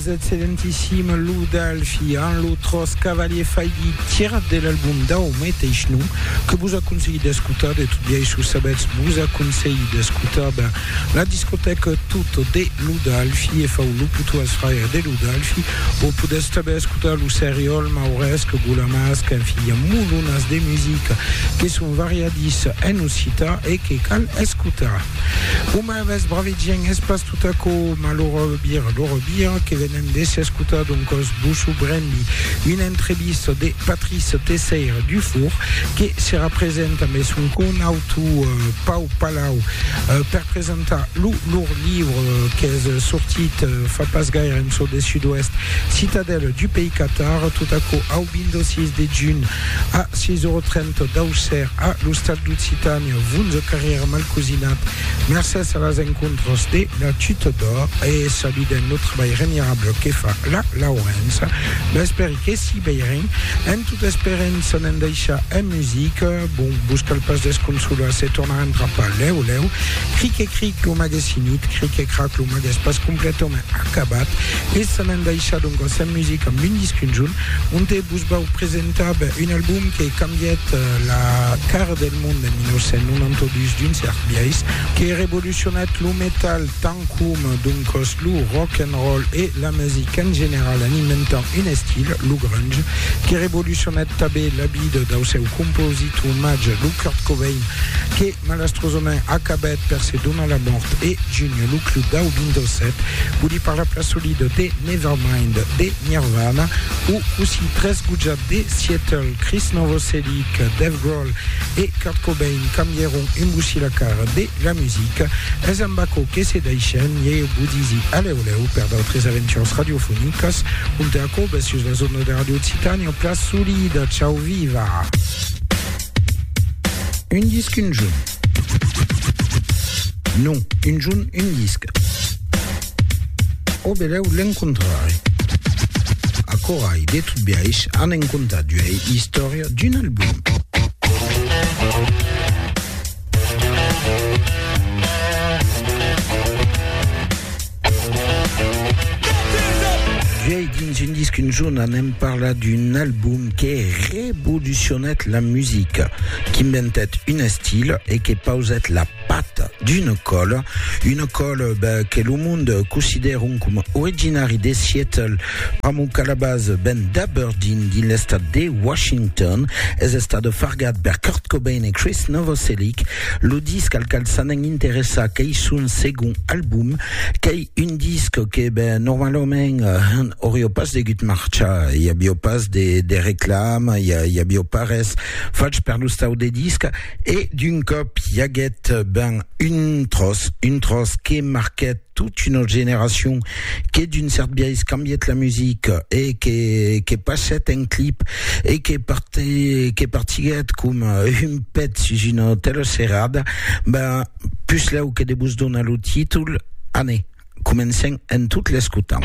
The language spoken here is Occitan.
Vous êtes excelentissime Lou Dalfi en lo tros cavalier faigui tirat de l'album dau meteis nom que vos aconselhi d'escotar de tot biais sus sabetz vos aconselhi d'escotar ben la discoteca tot de Lou Dalfi e fau lo puto als fraires de Lou Dalfi vos podetz tanben escotar lo seriol mauresc gulamasc en fin i a molonas de musica que son variadissa en occitan e que cal escotar Ves bravi gent, es pas tot aquò malora le bira, lora bira que venem de s'escotar doncòs Bosso Brembi, una entrevista de Patrice Tesseyre Dufour que serà present ambe son conautu Pau Palau per presentar lo lor livre qu'es sortit fa pas gaire en çò de Sud-Oèst, Citadelle du pays Catar, tot aquò au 26 de junh a 6 ora 30 d'Auxerre a l'Ostal d'Occitània, 11 carrièr Malcosinat. Mercés a las encontras de la Chute d'Or e saludem lo trabalh remirable que fa la Laurença, m'esperi que s'i veiren, en tot esperent se ne'n daishar en musica, bon, vos cal pas desconsolar se tornarem trapar lèu lèu, cric e cric lo mag es finit, cric e crac lo mag es pas completament acabat e se ne'n daishar doncas en musica amb un disc un junh onte vos vau presentar ben un album que cambièt la cara de mond en 1992 d'un cèrt biais que revolucionèt lo metal tant com d'un còs lo rock and roll e la musica en general en inventant un estil, lo grunge, que revolucionèt tanben la vida dau seu compositor màger, lo Kurt Cobain, que malastrosament acabèt per se donar la mòrt e junhir lo club dau 27, vòli per la plaça solida de Nevermind de Nirvana o cossí tresgotjat de Seattle, Krist Novoselic, Dave Grohl, Warhol e Kurt Cobain cambièron embussi la cara de la musica, es amb aquò que se daishen e eu vos disi alèu lèu per d'autres aventures radiofonicas, compte aquò bes sus las ondas de Radio Occitània, plas solida, chau viva! Un disc un junh? Non, un junh un disc. O belèu l'encontrarè. Aquò ai de tot biais a ne'n contar d'uei istòria d'un album. D'uei dins un disc un jorn anem parlar d'un album que revolucionèt la musica, qu'inventèt un estil e que pausèt la Pat d'una còla, una còla ben, que lo mond considèron coma originari de Seattle, pr'amor qu'a la base ven d'Aberdeen, dins l'estat de Washington, es estat fargat per Kurt Cobain e Chris Novoselic, lo disc al cal s'anèn interessar qu'ei son segond album, qu'ei un disc que ben, normalament hèn aurió pas degut marchar, i avió pas de reclama, i avió pas res fach per lo stau de disc, E d'un còp i aguèt ben un tròç, un tròç que marquèt tot una generacion, que d'un cèrt biais cambièt la musica e que que passèt en clip e que parti, que partiguèt coma un pet sus una teleserada, ben puslèu que de vos donar lo títol, anè, comencèm en tot l'escotant.